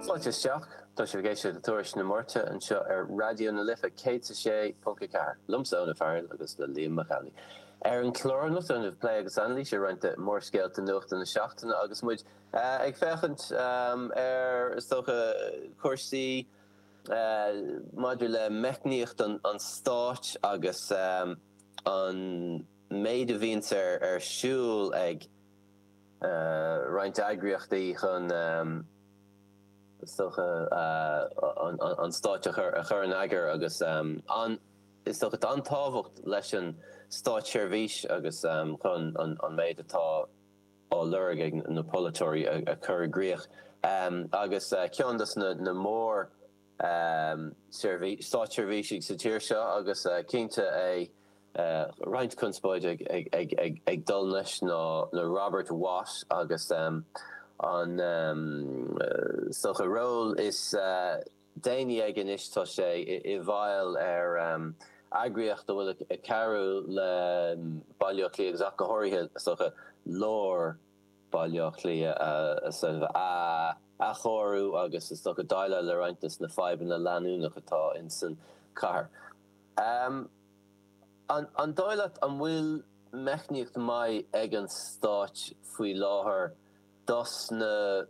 Fáilte isteach! Tá sibh ag éisteacht le Tuairisc na Máirte anseo ar Raidió na Life 106.4, liomsa, Eoin Ó Fearghail, agus le Liam Mac Amhlaigh. Ar an chlár anocht déanfaimid plé agus anailís ar roinnt de mhórscéalta nuachta na seachtaine agus muid ag féachaint ar, is dócha, cúrsaí maidir le meicníocht an stáit agus an méid a bhíonns ar siúl ag. roinnt eagraíochtaí chun, is dócha, an stáit a chur in eagar agus, is dócha, tá an-tábhacht leis an státseirbhís chun an méid atá á lorg ag na polaiteoirí a chur i gcrích agus ceann des na mór, stáitseirbhísigh sa tír seo agus cinnte roinnt conspóide ag dul leis ná Robert Watt agus an, is dócha, ról is déanaí aige anois tá sé i bhfeighil ar eagraíocht a bhfuil ag cabhrú le Baile Átha Cliath agus ach go háirithe, is dócha, lár Baile Átha Cliath a athchóiriú agus is dócha déileáil le roinnt des na fadhbanna leanúnach atá insan chathair. An dóigh leat an bhfuil meicníocht maith ag an stáit faoi láthair dos na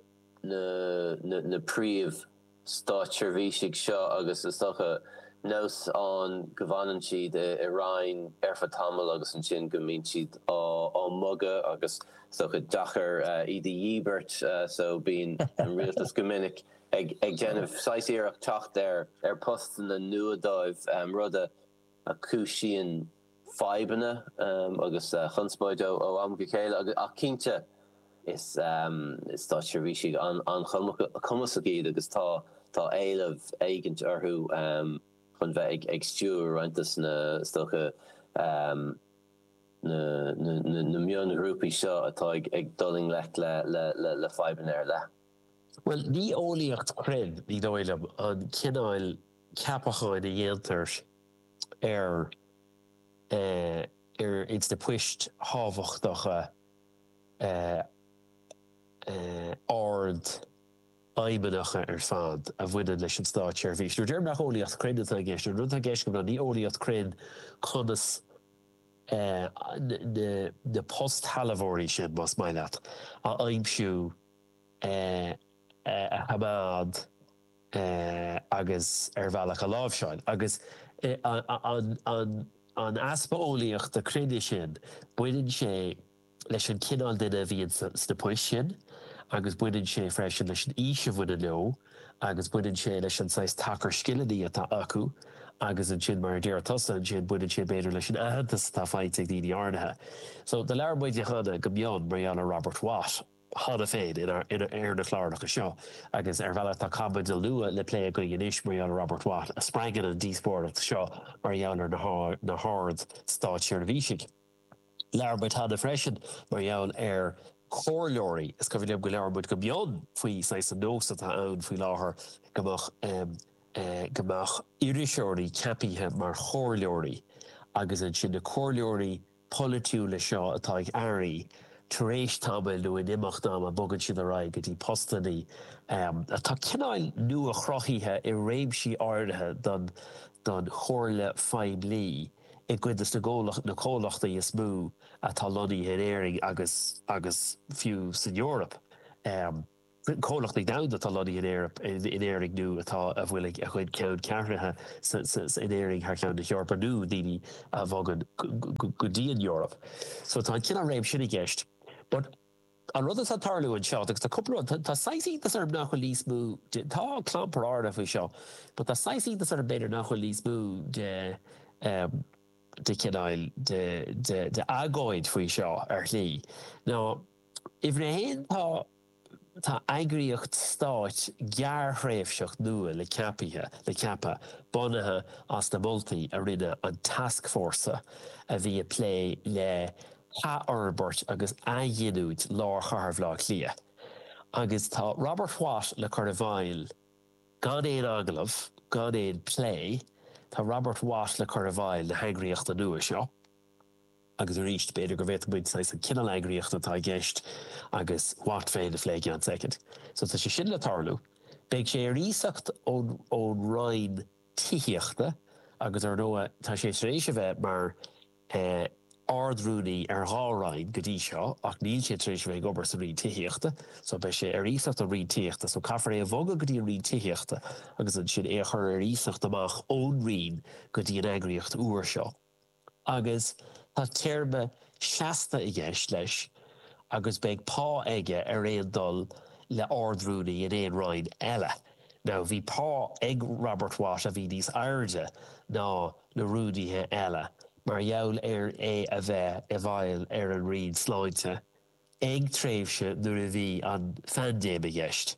príomh-. státseirbhísigh seo agus is dócha, nós ann go bhfanann siad i Roinn ar feadh tamaill agus ansin go mbíonn siad á mbogadh agus is dócha deacair iad a dhíbirt so bíonn an rialtas go minic ag déanamh saghas iarracht teacht ar postanna nua dóibh, rud a. chúisíonn fadhbanna agus conspóid ó am go chéile ach cinnte is stáitseirbhísigh an-chumasach iad agus tá éileamh éigint orthu chun bheith ag stiúradh roinnt des na, is dócha, na mionghrúpaí seo atá ag dul i ngleic le fadhbanna ar leith. Bhuel, ní eolaíocht chruinn, ní dóigh liom, an cineál ceapacháin a dhéantar ar, ar, ins na poist thábhachtacha ardfheidhmeannacha ar fad a bhaineann leis an státseirbhís. Nuair a deirim nach eolaíocht chruinn atá i gceist, an rud atá i gceist agam ná ní eolaíocht chruinn conas na postshealbhóirí sin, más maith leat, a aimsiú. a choimeád agus ar bhealach a láimhseáil. Agus an easpa eolaíochta cruinnis sin, baineann sé leis an chineál duine a bhíonn sna poist sin agus baineann sé freisin leis an aois a bhaineann leo agus baineann sé leis an saghas tacar scileanna atá acu agus ansin, mar a deir tusa, ansin baineann sé b'fhéidir leis an aitheantas atá faighte ag daoine áirithe. So, labhair muid cheana go mion mar gheall ar Robert Watt. cheana féin ar na cláracha seo agus ar bhealach tá caibidil nua le plé againn anois mar gheall ar Robert Watt a spreagann an díospóireacht seo mar gheall ar na hard-státseirbhísigh. Labhair muid cheana freisin mar gheall ar chomhairleoirí, is cuimhin liom gur labhair muid go mion faoi saghas an nós atá ann faoi láthair go mbeadh iriseoirí ceapaithe mar chomhairleoirí agus ansin na comhairleoirí polaitiúla seo atá ag airí, tar éis tamaill nó in imeacht ama bogann siad ar aghaidh go dtí postanna atá cineál nua-chruthaithe i réimsí áirithe don chomhairle phoiblí i gcuid de na comhlachtaí is mó atá lonnaithe in Éirinn agus fiú san Eoraip. comhlachtaí domhanda atá lonnaithe in Éirinn, in Éirinn nó tá, a bhfuil a gcuid ceanncheathraithe in Éirinn thar cheann na hEorpa nó daoine a bhogann go dtí an Eoraip. So tá an cineál réim sin i gceist. But an rud atá ag tarlú anseo, agus tá cúpla rud, tá saghas iontas orm nach bhfuil níos mó de, tá clampar áirithe faoi seo, but tá saghas iontas orm b'fhéidir nach bhfuil níos mó de, de chineál, de, de, de agóid faoi seo ar shlí. Now. Uimhir a haon, tá tá eagraíocht stáit gearrthréimhseach nua le ceapaithe le ceapadh, bunaithe as na moltaí a rinne an tascfhórsa a bhí a plé le hathfhorbairt agus athghiniúint lár chathair Bhaile Átha Cliath. Agus tá Robert Watt le cur i bhfeighil gan aon agallamh, gan aon phlé, tá Robert Watt le cur i bhfeighil na heagraíochta nua seo. Agus aríst, b'fhéidir go bhféadfadh muid saghas an cineál eagraíochta atá i gceist agus Watt féin a phlé i gceann soicind. So tá sé sin le tarlú. Beidh sé ar iasacht ón Roinn Tithíochta agus ar ndóigh tá sé tar éis a bheith mar eh Ard-Rúnaí ar dhá Roinn go dtí seo ach níl sé tar éis a bheith ag obair sa Roinn Tithíochta so beidh sé ar iasacht ón Roinn Tithíochta so caithfear é a bhogadh go dtí an Roinn Tithíochta agus ansin é a chur ar iasacht amach ón Roinn go dtí an eagraíocht úr seo. Agus tá téarma seasta i gceist leis agus beidh pá aige ar aon dul le Ard-Rúnaí in aon Roinn eile. Now, bhí pá ag Robert Watt a bhí níos airde ná na Rúnaithe eile mar gheall ar é a bheith i bhfeighil ar an Roinn Sláinte ag tréimhse nuair a bhí an phaindéim i gceist.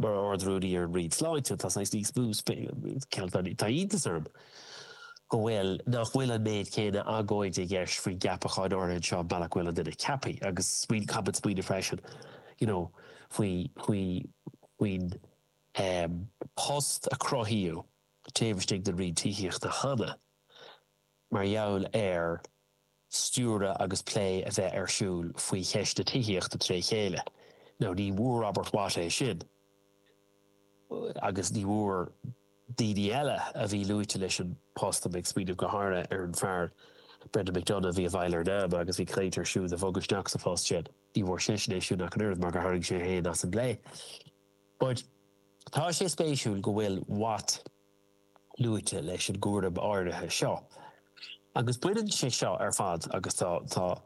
mar Ard-Rúnaí ar an Roinn Sláinte, tá saghas níos mó spéis. Tá iontas orm go bhfuil, nach bhfuil an méid céanna agóide i gceist faoi gceapacháin áirithe anseo, an bealach go bhfuil an duine ceaptha agus smaoin, caithfimid smaoineamh freisin, you know, faoi, faoi, faoin ehm post a cruthaíodh taobh istigh den Roinn Tithíochta cheana mar gheall ar. stiúradh agus plé a bheith ar siúl faoi cheist na tithíochta tré chéile. Now ní bhfuair Robert Watt é sin agus ní bhfuair daoine eile a bhí luaite leis an post, tá mé ag smaoineamh go háirithe ar an fear Brendan McDonagh a bhí i bhfeighil ar NAMA agus bhí caint ar siúd a bhogadh isteach sa phost sin, ní bhfuair seisean é siúd ach an oiread mar gur tharraing sé é féin as an bplé. But tá sé spéisiúil go bhfuil Watt, luaite leis an gcúram áirithe seo. Agus baineann sé seo ar fad, agus tá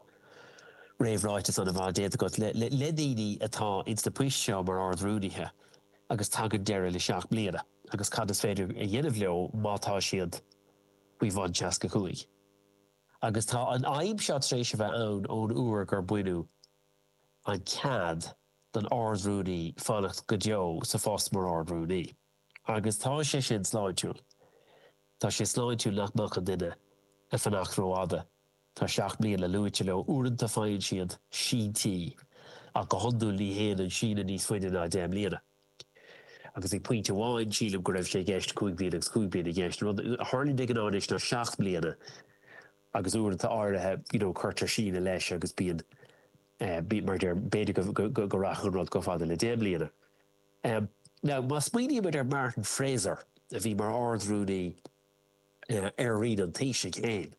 réamhráiteas an-mhaith déanta agat, le daoine atá ins na poist seo mar Ard Rúnaithe agus tagann deireadh le seacht mbliana agus cad is féidir a dhéanamh leo má tá siad faoi bhun seasca cúig. Agus tá an fhadhb seo tar éis a bheith ann ón uair gur baineadh an cead don Ard Rúnaí fanacht go deo sa phost mar Ard Rúnaí. Agus tá sé sin sláintiúil. Tá sé sláintiúil nach mbeadh an duine ag fanacht rófhada, tá seacht mbliana luaite leo, uaireanta faigheann siad síntí ach go hiondúil ní théann an síneadh níos faide ná deich mbliana. Agus ag pointe amháin sílim go raibh sé i gceist cúig bliana agus cúig bliana i gceist. An rud a tharlaíonn de ghnáth anois ná seacht mbliana agus uaireanta áirithe you know cuirtear síneadh leis agus bíonn mar a deir b'fhéidir go rachadh an rud chomh fada le deich mbliana. Now, má smaoinímid ar Martin Fraser, a bhí mar Ard-Rúnaí ar Roinn an Taoisigh é féin,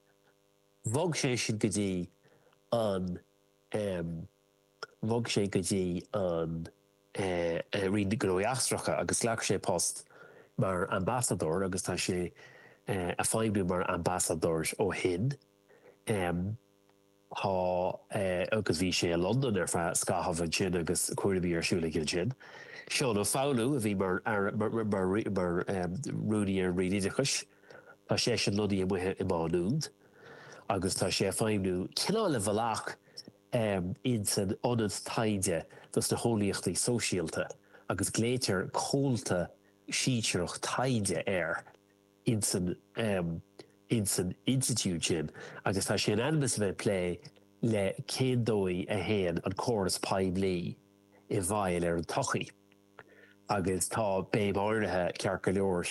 bhog sé sin go dtí an, bhog sé go dtí an Roinn Gnóthaí Eachtracha agus ghlac sé post mar Ambasadóir agus tá sé a' feidhmiú mar Ambasadóir ó shin. Tá, agus bhí sé i Londain ar feadh scaithimh ansin agus cúraimí ar siúl aige ansin. Seán Ó Foghlú a bhí mar mar rúnaí ar an Roinn Oideachais, tá seisean lonnaithe amuigh i Má Nuad agus tá sé ag feidhmiú cineál ar bhealach in san Ionad Taighde dos na hEolaíochtaí Sóisialta agus glaoitear Comhalta Sinsearach Taighde air. insan, em. insan institiúid sin agus tá sé in ainm is a bheith ag plé le cén dóigh a théann an córas poiblí i bhfeighil ar an tsochaí agus tá béim áirithe, ceart go leor,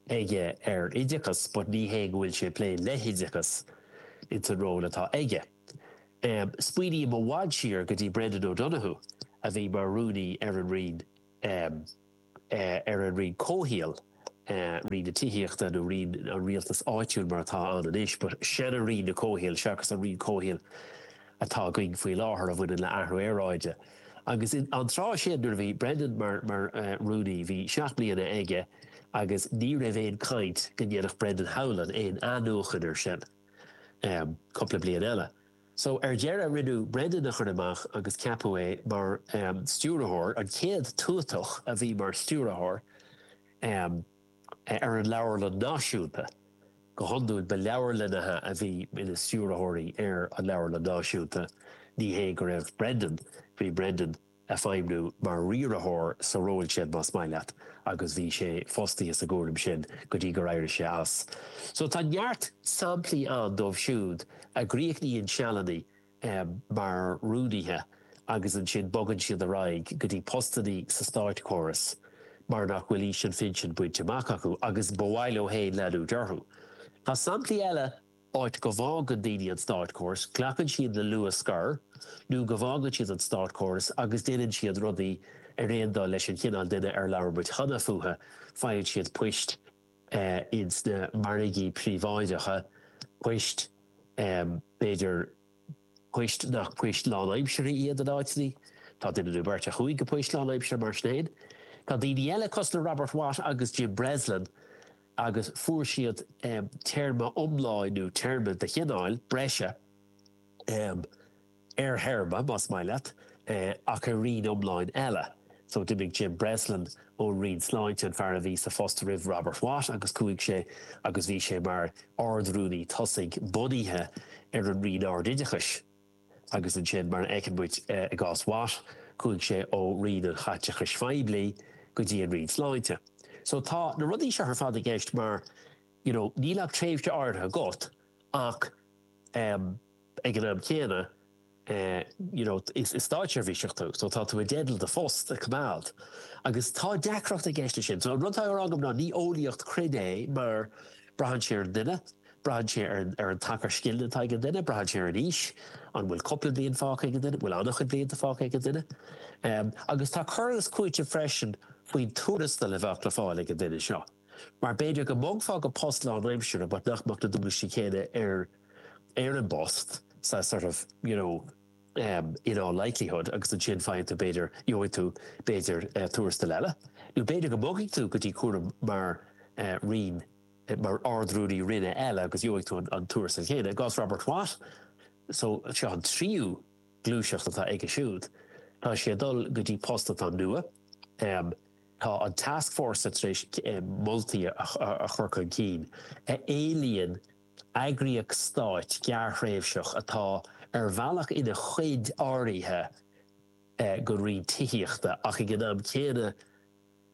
aige ar oideachas but ní hé go bhfuil sé ag plé le hoideachas insan ról atá aige. Em, smaoiním i bhfad siar go dtí Brendan O'Donoghue a bhí mar rúnaí ar an Roinn, em. ar an roinn comhshaoil, roinn na tithíochta nó roinn an rialtais áitiúil mar atá ann anois, but seanRoinn an Chomhshaoil seachas an roinn comhshaoil atá againn faoi láthair a bhaineann le athrú aeráide. Agus an tráth sin nuair a bhí Brendan mar mar rúnaí bhí seacht mbliana aige agus ní raibh aon caint go ndéanfadh Brendan Howlin aon athnuachan ar sin cúpla bliain eile. So, ar deireadh, rinneadh Brendan a chur amach agus ceapadh é mar, em, stiúrthóir, an chéad tuatach a bhí mar stiúrthóir, em, ar an Leabharlann Náisiúnta. Go hiondúil, ba leabharlannaithe a bhí ina stiúrthóirí ar an Leabharlann Náisiúnta, ní hé go raibh Brendan, bhí Brendan, ag feidhmiú mar riaraitheoir sa ról sin más maith leat agus bhí sé fostaithe sa gcúram sin go dtí gur éirigh sé as. So tá neart samplaí ann dóibh siúd a chríochnaíonn sealanna mar rúnaithe agus ansin bogann siad ar aghaidh go dtí postannaí sa státchóras mar nach bhfuil aois an phinsin bainte amach acu agus ba mhaith leo féin leanúint orthu. Tá samplaí eile. áit go bhfágann daoine an státchóras, glacann siad le luath scor nó go bhfágann siad an státchóras agus déanann siad rudaí ar aon dul leis an chineál duine ar labhair muid cheana fúthu, faigheann siad poist ins na margaí príobháideacha, poist, b'fhéidir poist nach poist lánaimseartha iad in áiteannaí, tá duine nó beirt a chuaigh go poist lánaimseartha mar sin fhéin. Tá daoine eile, cosúil le Robert Watt agus Jim Breslin, agus fuair siad téarma iomlán, nó téarma de chineál, breise, ar théarma, más maith leat, ach ar roinn iomlán eile. So, d'imigh Jim Breslin ón Roinn Sláinte, an fear a bhí sa phost roimh Robert Watt, agus chuaigh sé agus bhí sé mar Ard-Rúnaí tosaigh bunaithe ar an Roinn Ard-Oideachais. agus ansin, mar a fheiceann muid i gcás Watt, chuaigh sé ó Roinn an Chaiteachais Phoiblí go dtí an Roinn Sláinte. So, tá na rudaí seo ar fad i gceist mar, you know, níl ach tréimhse áirithe agat ach, um, ag an am céanna, eh, you know, is státseirbhíseach tú, so tá tú i dteideal do phost a choimeád. Agus tá deacracht i gceist leis sin. So, an rud atá ag rá agam ná ní eolaíocht chruinn é mar braitheann sé ar an duine. Braitheann sé ar an tacar scileanna atá ag an duine, braitheann sé ar an aois, an bhfuil cúpla bliain fágtha ag an duine, an bhfuil an-chuid blianta fágtha ag an duine. Agus tá cur agus cúiteamh freisin faoin tuarastal a bheadh le fáil ag an duine seo, mar b'fhéidir go mbogfá go post lánaimseartha but nach mbeadh na dualgaisí céanna ar an bpost so sort of you know in all likelihood agus ansin faigheann tú b'fhéidir, gheobhaidh tú b'fhéidir tuarastal eile nó b'fhéidir go mbogfaidh tú go dtí cúram mar. mar Ard-Rúnaí Roinne eile agus gheobhaidh tú an tuarastal céanna. I gcás Robert Watt, só, seo an tríú gluaiseacht atá aige siúd. Tá sé ag dul go dtí post atá nua. Tá an tascfhórsa tar éis moltaí a chur chun cinn a éilíonn eagraíocht stáit gearrthréimhseach atá ar bhealach ina chuid áirithe den roinn tithíochta ach ag an am céanna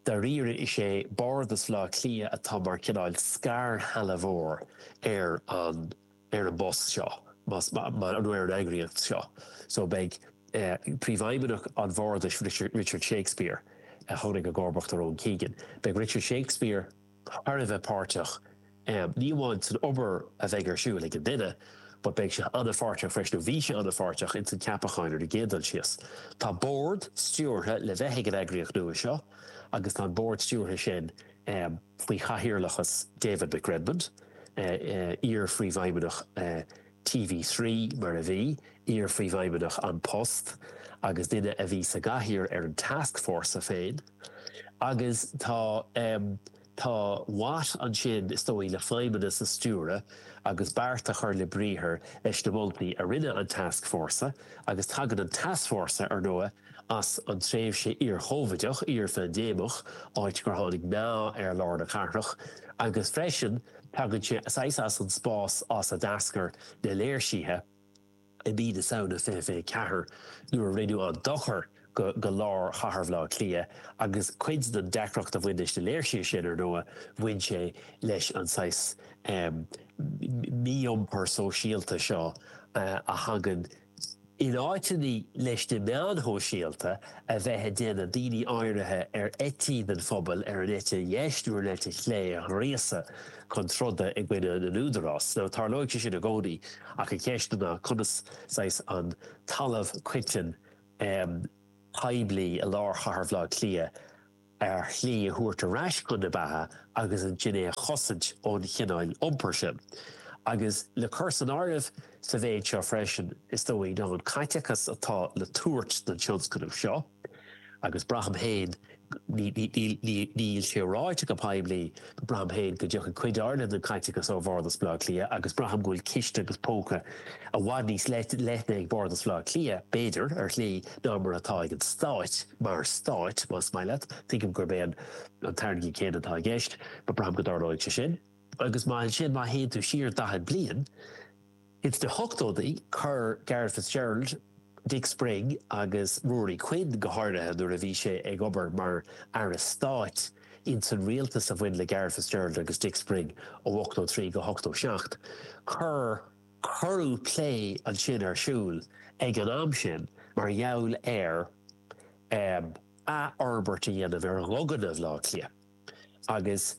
Dáiríre is é Bardas Bhleá Cliath atá mar cineál scairshealbhóir ar an ar an bpost seo más maith nó ar an eagraíocht seo so beidh Príomhfheidhmeannach an Bhardais Richard Shakespeare a tháinig i gcomharbacht ar Owen Keegan, beidh Richard Shakespeare. thar a bheith páirteach, ní amháin san obair a bheidh ar siúl ag an duine, but beidh sé an-pháirteach freisin, nó bhí sé an-pháirteach, ins an gceapachán ar an gcéad dul síos. Tá bord stiúrtha le bheith ag an eagraíocht nua seo agus tá an bord stiúrtha sin faoi chathaoirleachas David McRedmond, iar-phríomhfheidhmeannach. TV3, mar a bhí, iar-Phríomhfheidhmeannach An Post agus duine a bhí sa gcathaoir ar an tascfhórsa féin. Agus tá, em, tá Watt ansin, is dóigh, le feidhmeannas a stiúradh agus beart a chur le briathar leis na moltaí a rinne an tascfhórsa agus tagann an tascfhórsa, ar ndóigh, as an tréimhse iar-Chóivideach, iar-phaindéimeach, áit gur tháinig meath ar lár na cathrach, agus freisin tagann sé saghas as an spás as a d'eascair na léirsithe i mí na Samhna 2024 nuair a rinneadh an dochar go lár chathair Bhleá Cliath agus cuid den deacracht a bhain leis na léirsithe sin, ar ndóigh, bhain sé leis an saghas mí-iompar sóisialta seo a thagann In áiteanna leis na meáin shóisialta a bheith ag déanamh daoine áirithe ar eití den phobal ar an eite dheis nó ar an eite chlé a ghríosadh chun troda i gcoinne na n-údarás, so, tarlóidh sé sin i gcónaí ach an cheist ná conas, saghas, an talamh coiteann, em, poiblí i lár chathair Bhleá Cliath, ar shlí a thabhairt ar ais chun na beatha agus ansin é a chosaint ón chineál iompair sin. Agus le cur san áireamh sa mhéid seo freisin, is dóigh, ná an caiteachas atá le tabhairt don tionscnamh seo, agus braithim féin, níl sé ráite go poiblí, Braithim féin go dtiocfaidh cuid áirithe den caiteachas ó Bhárdas Bhaile Átha Cliath agus braithim go bhfuil ciste agus póca i bhfad níos leithne ag Bárdas Bhaile Átha Cliath, b'fhéidir, ar shlí, ná mar atá ag an Stáit, mar Stáit, más maith leat, tuigim gurb é an t-airgead céanna atá i gceist, but braithim go dtarlóidh sé sin. Agus má ansin, má théann tú siar daichead bliain, Ins na hochtóidí, chuir Garret Fitzgerald, Dick Spring agus Ruairí Quinn, go háirithe nuair a bhí sé ag obair mar Aire Stáit ins an rialtas a bhain le Garret Fitzgerald agus Dick Spring ó 83 go 87, cuir cuireadh plé ansin ar siúl ag an am sin mar gheall ar athfhorbairt a dhéanamh ar dhuganna Bhaile Átha Cliath. Agus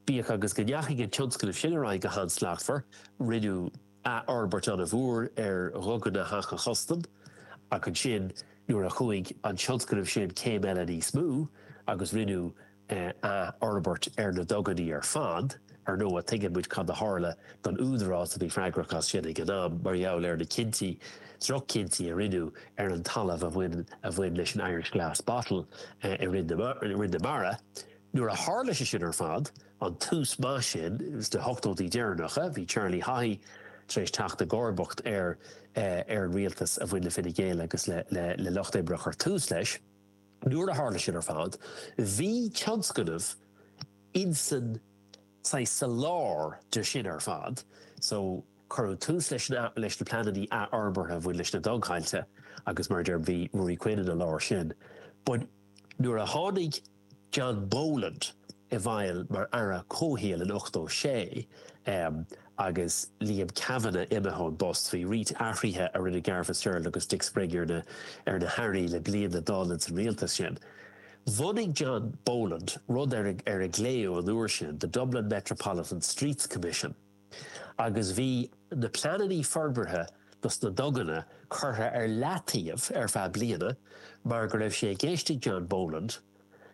bíodh agus go ndeachaigh an tionscnamh sin ar aghaidh go han-slachtmhar, rinneadh athfhorbairt an-mhór ar Dhuganna Theach an Chustaim, ach ansin nuair a chuaigh an tionscnamh sin céim eile níos mó agus rinneadh athfhorbairt ar na duganna ar fad, Ar ndóigh, tuigeann muid cad a tharla don údarás a bhí freagrach as sin ag an am, mar gheall ar na cinntí, droch-chinntí, a rinneadh ar an talamh a bhain, a bhain leis an Irish Glass Bottle i Rinn na, Rinn na Mara. Nuair a tharla sé sin ar fad, an tús maith sin sna hochtóidí deireanacha, bhí Charlie Haughey tar éis teacht i gcomharbacht ar, ar an rialtas a bhain le Fine Gael agus le, le, le Lucht Oibre chur tús leis. Nuair a tharla sin ar fad, bhí tionscnamh insan saghas sa lár de sin ar fad, so cuireadh tús leis na leis na pleanannaí athfhorbartha a bhain leis na dugthailte agus mar a deir bhí Ruairí Quinn ina lár sin but nuair a tháinig John Boland i bhfeighil mar Aire Comhshaoil in ochtó sé, em, agus Liam Kavanagh imithe ón bpost. Bhí roinnt athruithe a rinne Garret Fitzgerald agus Dick Spring ar na hAirí le bliain le dul ins an rialtas sin. Bhunaigh John Boland rud ar a glaodh an uair sin The Dublin Metropolitan Streets Commission agus bhí na pleananna forbartha dos na duganna curtha ar leataobh ar feadh bliana mar go raibh sé i gceist ag John Boland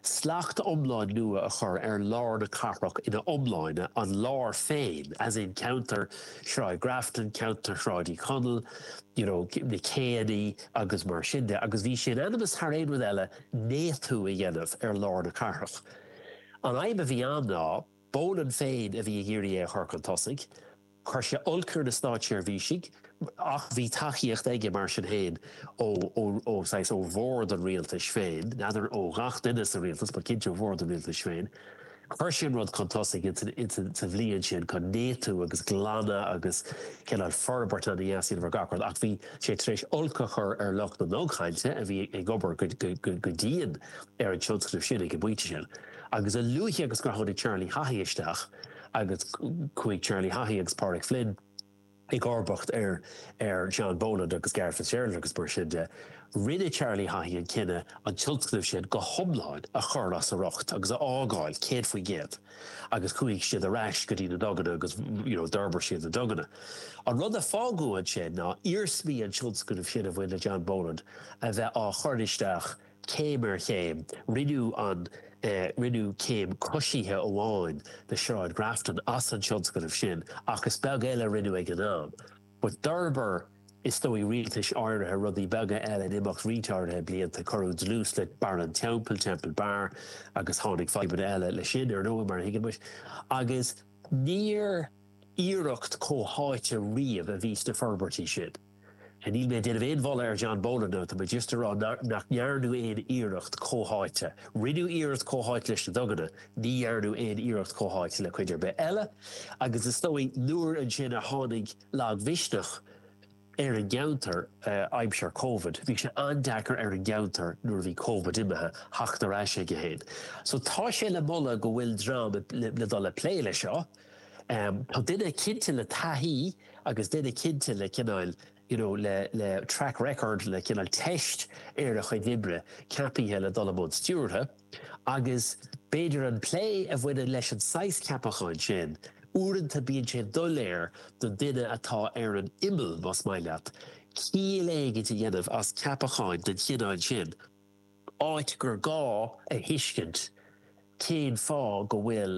Slacht iomlán nua a chur ar lár na cathrach ina iomláine, an lár féin, as in ceantar Shráid Grafton, ceantar Shráid Uí Chonaill, you know, na céannaí agus mar sin de. Agus bhí sé in ainm is thar aon rud eile néatú a dhéanamh ar lár na cathrach. An fhadhb a bhí ann ná, Boland féin a bhí ag iarraidh é a chur chun tosaigh, Chuir sé olc ar na státseirbhísigh ach bhí tacaíocht aige mar sin féin ó, ó, saghas, ó bhord an rialtais féin, n'fheadar ó ghach duine sa rialtas but cinnte ó bhord an rialtais féin. Chuir sé an rud chun tosaigh ins an, ins an, sa bhliain sin, chun néatú agus glanadh agus cineál forbairt ana dheas a dhéanamh ar gach rud ach bhí sé tar éis olc a chur ar lucht na ndugthailte a bhí ag obair go, go, go dian ar an tionscnamh sin ag an bpointe sin. Agus a luaithe agus gur tháinig Charlie Haughey isteach agus chuaigh Charlie Haughey agus Páraic Flynn i gcomharbacht ar ar John Boland agus Garret Fitzgerald agus mar sin de, rinne Charlie Haughey an cinneadh an tionscnamh sin go hiomlán a chur as a riocht agus a fhágáil céad faoin gcéad agus chuaigh siad ar ais go dtí na duganna agus you know d'fhorbair siad na duganna. An rud a fágadh ansin ná iarsmaí an tionscnaimh sin a bhain le John Boland a bheith á chur isteach Céim ar chéim, rinneadh an, rinneadh céim coisithe amháin de Shráid Grafton as an tionscnamh sin ach is beag eile a rinneadh ag an am. But d'fhorbair is dóigh rialtais áirithe rudaí beaga eile in imeacht roinnt áirithe blianta, cuireadh dlús le Barra an Teampaill, Temple Bar, agus tháinig fadhbanna eile leis sin, ar ndóigh, mar a thuigeann muid, agus níor iarracht comhtháite riamh a bhí sna forbairtí sin. Níl mé ag déanamh aon mholadh ar John Boland ach tá mé just ag rá nach ndearnadh aon iarracht comhtháite. Rinneadh iarracht comhtháite leis na duganna, ní dhearnadh aon iarracht comhtháite le cuid ar bith eile agus is dóigh nuair ansin ar tháinig lagmhisneach ar an gceantar aimsir Covid, bhí sé an-deacair ar an gceantar nuair a bhí Covid imithe, theacht ar ais aige féin. So tá sé le moladh go bhfuil dream le dul ag plé leis seo, Tá duine cinnte le taithí agus duine cinnte le cineál you know le le track record le cineál teist ar a chuid oibre ceapaithe le dul i mbun stiúrtha agus b'fhéidir an plé a bhaineann leis an saghas ceapacháin sin uaireanta bíonn sin doiléir don duine atá ar an imeall más maith leat ciall éigin a dhéanamh as ceapacháin den chineál sin áit gur gá a thuiscint cén fáth go bhfuil